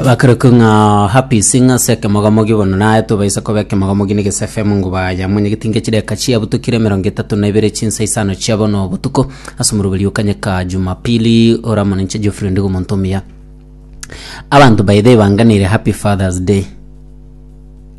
bakarokwa ng'a happy sing ase ekemogamogi bono naye tobaisa koba ekemogamogi na egese fm nguba ya mwenye getinga chideka chiabutukire emerongo etato na ibere chinsa isano chia bono obotuko ase omoroberi okanyeka jumapili oramo ninche geoffrey ndigo omonto omuya abanto baye taibanganeire happy fathers day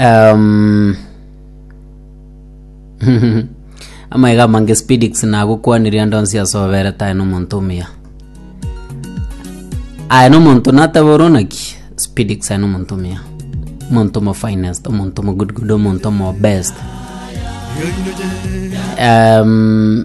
Um, amaega amange spidix nagokwanire ande onsi ase oberete aye nomonto omuya aye nomonto natebe ore onaki spidix aye nomonto omuya omonto mo finest omonto mo good good omonto mo best um,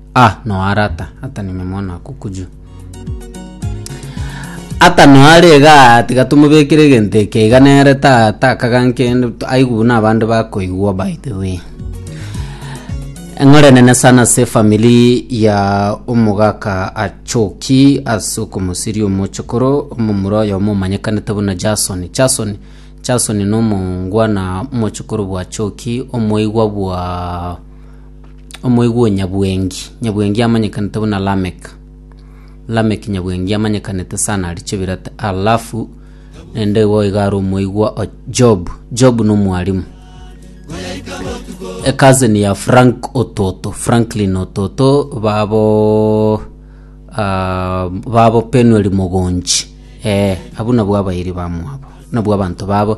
Ah, no ara ata ata nime mwana akukuju ata no ara iga tiga tumubekere egento eke iga nere ta takaga nkende tu- aigu buna abande bakoigwa by the way eng'ore nene sana ase efamiri ya omogaka achoki ase okomosiria omochokoro omomura oyomo omanyekanete buna jason jason jason na omongwana omochokoro bwa choki omoigwa bwa omoigwa o nyabwengi, nyabwengi amanyekanete buna Lamek. Lamek nyabwengi amanyekanete sana aria chebirate, alafu naende igo iga are omoigwa o Job. Job na omwarimu. A cousin ya Frank Ototo, Franklin Ototo babo ah, babo Penuel Mogonji. Eh, abuna bwa abairi bamwabo. Nabwo abanto babo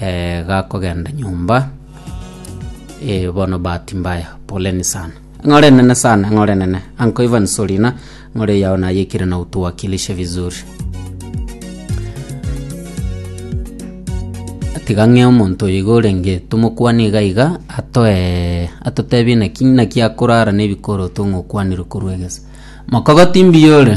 eh, gakogenda nyomba eh, bono bahati mbaya poleni sana ng'ore nene sana ng'ore nene anko ivan solina ng'ore yao nayekire na utuwakilishe vizuri tiga ng'e omonto oyo iga orenge tomokwane iga iga atoe atotebie naki naki akorara na ebikoro tong'okwanire korwa egese mokogoti mbiya ore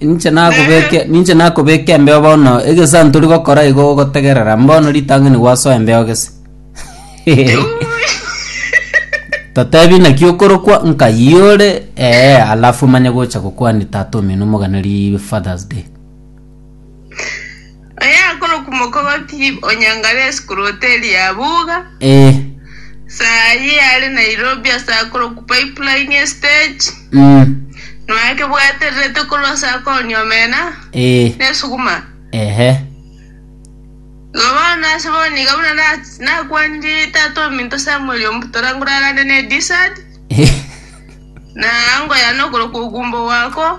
Ninche nakobeke ninche nakobeke embeo bono egesanto tori gokora igo ogotegerera mbono ritang'ani gwasoa embeo gese totebi naki okorokwa nkai ore ee alafu manye gocha gokwania tata omino omogana ri father's day Oyakorokwa Mokogoti onyangare esukuru hoteri ya Buga. Eh. Saa eye yare Nairobi ase akorokwa Pipeline estage. Mm. Noake bwatererete korwa ase akooni omena. Eh. Nesuguma. Ehe. Igo bono ase bono iga buna nakwanirie tata ominto Samuel omutora ngorarane ne Dysart. Na ango yane okorokwa Ogumbo Wako.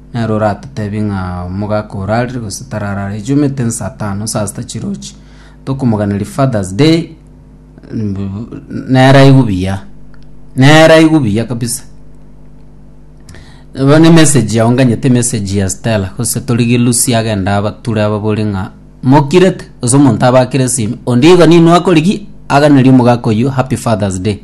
Nere oratoteebie ng'a omogaka orarire gose tararare, echumete nsaa tano, nsaa sita chirochi, tokomoganeria Father's Day, nere aigwe buya, nere aigwe buya kabisa. Bono emessage yago nganyete emessage ya Stella gose torigie Lucy agende abature ababorie ng'a mokirete, gose omonto abakere esimi, onde igo ninwe akorigia aganerie omogaka oyio happy Father's Day.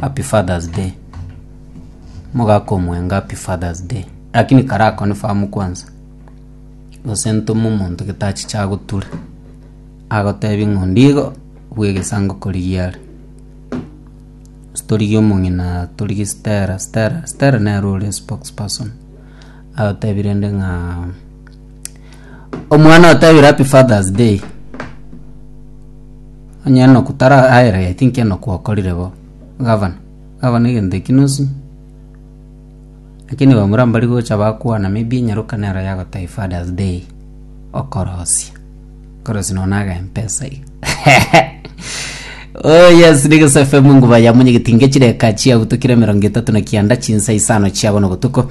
Happy Father's Day. Mogaka omwenga Happy Father's Day. Lakini kare akonifirm kwansa. Gose ntome omonto gete achiche agoture. Agotebie ng'a ondigo bwe egesango korigia are. Torigie omong'ina torigie Stella. Stella Stella nere ore spokesperson. Agotebie rende ng'a Omwana otebire happy father's day onye noku tara aere I think enoku okorire bo gavana gavana egento ekio nosi lakini bamura mbari gocha bakwana maybe nyaroka nero yagotebia father's day okorosia okorosia nonye na agempesa iga oh yes rigiso fm nguba ya monyegeti nge chire eka chiago tokire emerongo etato na kianda chinsa isano chiabo na obotuko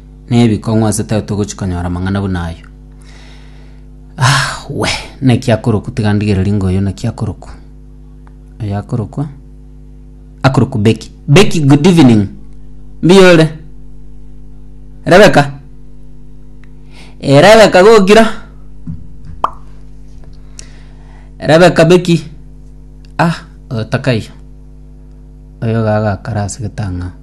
nebikong'u ase tari togochi konyora amang'ana buna ayio. Aahh wee, naki akoroku tiga ndigereri ng'a oyo naki akoroku. Oyo akorokwa, akorokwa Becky. Becky good evening, mbuya ore? Rebecca? Ee Rebecca gokira? Rebecca Becky, ah oyo takaiyo, oyo iga agakara ase getang'aa.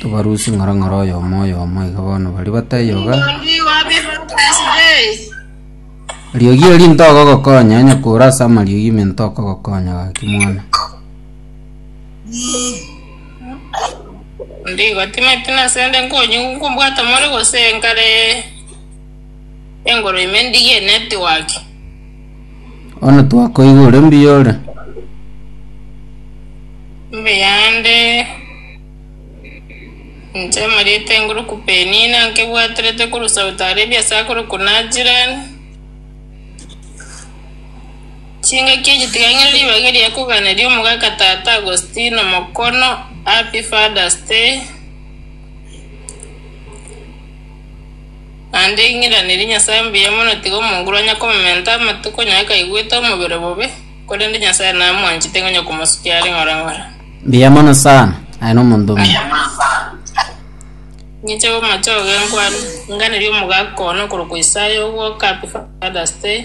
Tobarusie ng'orong'oro oyomo oyomo iga bono baria batayoga. Riogi eri ntogogokonya onye kore ase amariogi ime ntokogokonya gaki mwana. Ndigo timeti nasende nkonye nkombwata more gose nkare engoro ime ndigie network. Bono twakoigwa ore mbuya ore. Mbuya nde inche omorito enguruku Penina nkebwaterete korwa Saudi Arabia ase akorokwa Najran. Chingaki echi tiga ng'ire ribaga eria koganeria omogaka tata Augostino Mokono Happy Father's Day. Naende ing'iranerie Nyasae mbuya mono tiga omonguru anye komementa amatuko onye akaigwete omobere bobe, korende Nyasae namwanchete ngonya komosukia are ng'ora ng'ora. Mbuya mono sana. Aye nomonto omuya. Ing'eche gomocha ogenkwane, inganerie omogaka one okorokwa Isaya ogwo Kapi Father's Day.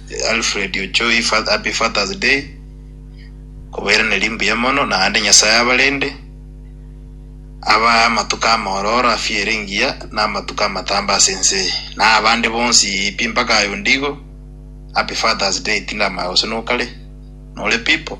Alfred Ochoi fa happy father's day kobairaneria mbuya mono naende nyasaye abarende abae amatuko amaororo afya ere engiya na amatuko amatambe ase ense eye na abande bonsi pi mpaka aye onde igo happy father's day tindamanya gose nokare nore pipo.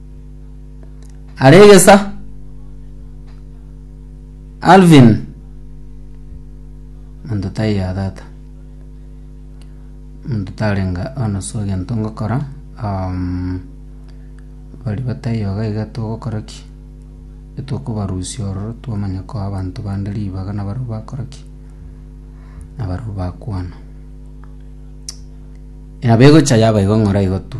Aregesa Alvin monto tai ya tata monto tarenga ono so egento ngokora um, bari batai yoga iga togokora ki etokobarusia ororo twamanya koa abanto bande ribaga nabarabwo bakora ki nabarabwo bakwana nabo egocha yaba igo ng'ora igo tu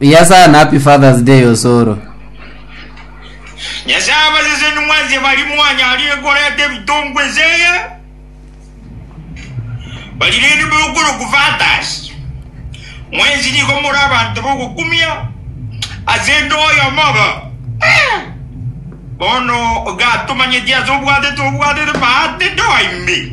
Buya sana, happy Father's Day Osoro. Nyasaye abaseseni mwense bari mwanyarire koreta ebitongwa eseye bari rende boyokorokwa fathers mwensi nigo more abanto bogokumia ase ndo oyomo obo Eh! bono gatomanyeti ase obwatete obwatete bahati ndo imbe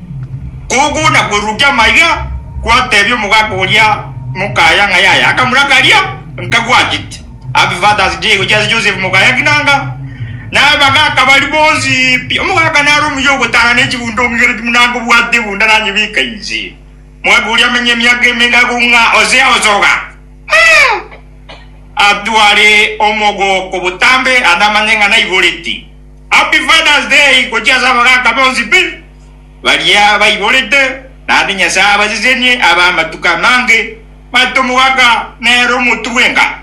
Koguna kwerurukia amaiga, gwatebia omogaka oria mokaya ng'a yaya akamura karia nkagwachete. Happy Father's Day gochia ase Joseph mokaya Kinanga na abagaka baria bonsi pi. Omogaka nare omuya ogotara ne chigunda ong'igere chimunange obwate egunda nanyebeka inse. Omogaka oria amenye emiaka emenge akoung'a ose osoga. Atware omogooko botambe ande amanye ng'a naigoreti. Happy Father's Day gochia ase abagaka bonsi pi, baria baiborete, naende Nyasae abasesenie abe amatuko amange maito omogaka nere omotu bwenka.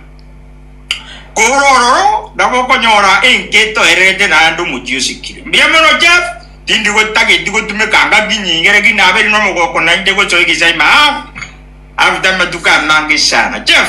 Kore ororo nabo okonyora enka etoererete naende omochie osikire. Mbuya mono Jeff, tindi gotageti gotumeka ngaki nyinge lakini naberi nomogooko naende gosoa egesaima half after amatuko amange sana. Jeff.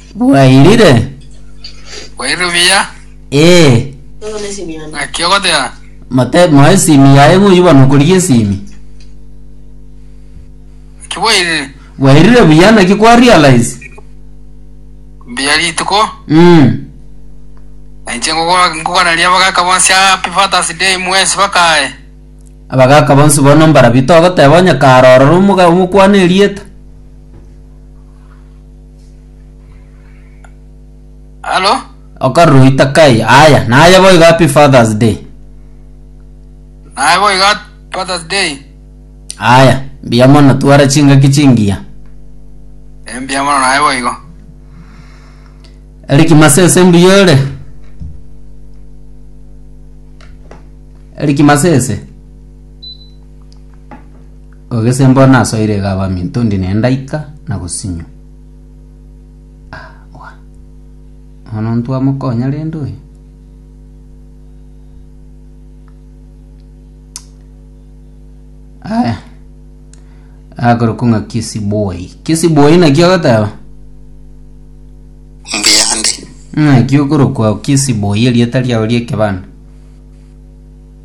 Bwairire? Bwairire buya. Ee. Naki ogoteba? Mote moe esimi yaye ng'oyio bono okorigia esimi. Naki bwairire? Bwairire buya naki kwa realize? Mbuya rituko. Mm. Nainche ngogo- ngogoraria abagaka bonsi happy Father's Day mwesi bakaye. Abagaka bonsi bono mbarabio togoteba onye kare ororo omoga- omokwana erieta. Halo? okorora oita kai aya naye boigo happy fathers day Naye boigo happy Father's Day. aya mbuya mono twara chingaki chingiya Embia mono naye boigo. eriki masese mbuya ore eriki masese Ogese mbao nasoire iga abaminto ndi nendaika na gosinywa. Ah, wa. Ono ntwamokonya rende oyo. Aya. Agoro kung'a kisi boy. Kisi boy na kio gataba. mbiyande Ng'a kio koro kwa kisi boy erieta riao riekebanda.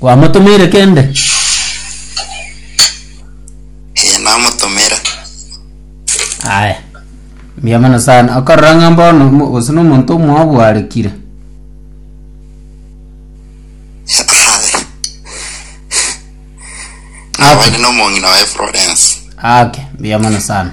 Kwamotomeire kende? Ee, namotomera. Aye. Mbuya mono sana. Okorora ng'a mbono mo- gose nomonto omwabo arekire. Aye. Nabande nomong'ina waye Florence. Ake, mbuya mono sana.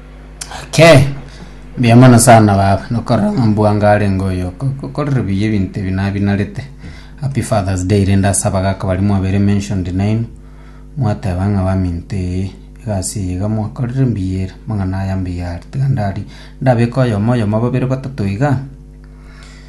Okay. Mbuya mono sana baba. Nokorora ng'a mbwanga are ngoyo. Kokorera buya ebintu ebi nabinarete. Happy Father's Day rende asaba gaka bari mwabere mentioned name. Mwateba ng'a baminto eye egasi eye iga mwakorire mbuya ere. Mang'ana aya mbuya are. Tiga ndari ndabeka oyomo oyomo babere batato iga.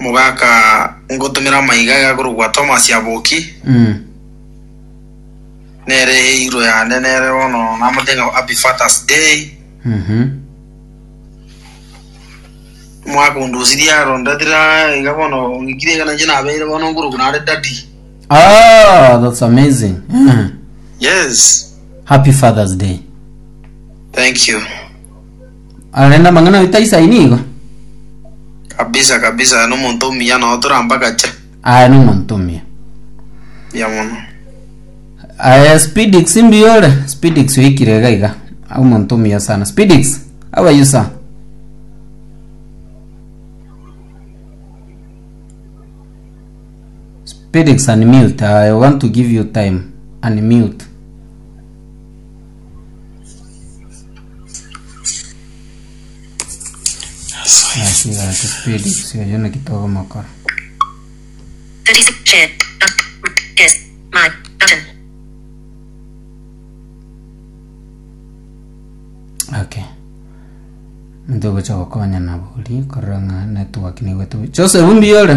Mogaka ngotumera amaiga aye akorokwa Thomas Aboki, nere eirwe yane nere bono namote ng'a Happy Fathers Day. Omwaka onde osirie aro ndatire aa iga bono ng'ikire iga nainche nabeire bono nkorokwa nare daddy. Ah, that's amazing. Yes, Happy Father's Day. thank you. Arende amang'ana aito ase aye nigo. kabisa kabisa aye nomonto omuya nao torambagache Aye nomonto omuya. ya mono Aye Spidix mbuya ore. Spidix oikire iga iga. Omonto omuya sana. Spidix, how are you sir? Spidix unmute. I want to give you time. Unmute. Nasigacha Felix oyo naki togomokora. 36 share but yes my button Okay. Ntogocha gokonya nabo ori korora ng'a network nigo etobe. Joseph mbiyore.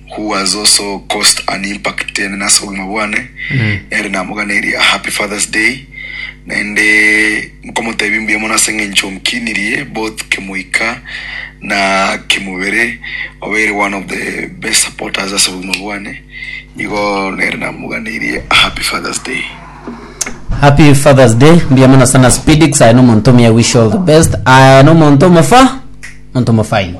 who has also caused an impact ere nase obogima bwane ere namoganeiri a happy fathers day naende nkomotebi mbuya mono ase eng'encho nkinirie both kemoika na kemobere obeire one of the best supporters ase obogima bwane igo nere namoganeiri a happy fathers day happy fathers day mbuya mono sana spedix aye nomonto omuya wish you all the best aye nomonto omofa monto omofaini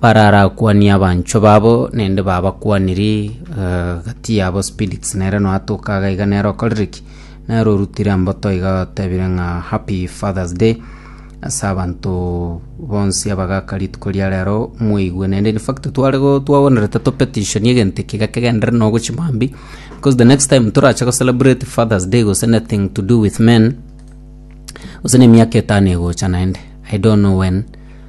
Bararakwanie abanchwa babo naende babakwaniri gati yabo spirits nere noatoka iga iga nere okorire ki nere orutire mboto iga otebire ng'a happy father's day ase abanto bonsi abagaka rituko ria rero mwaigwe naende in fact tware go twabonerete to petition egento eke iga kegenderere noo gochia mambia because the next time torache go celebrate father's day gose anything to do with men gose na emiaka etano egocha naende i don't know when.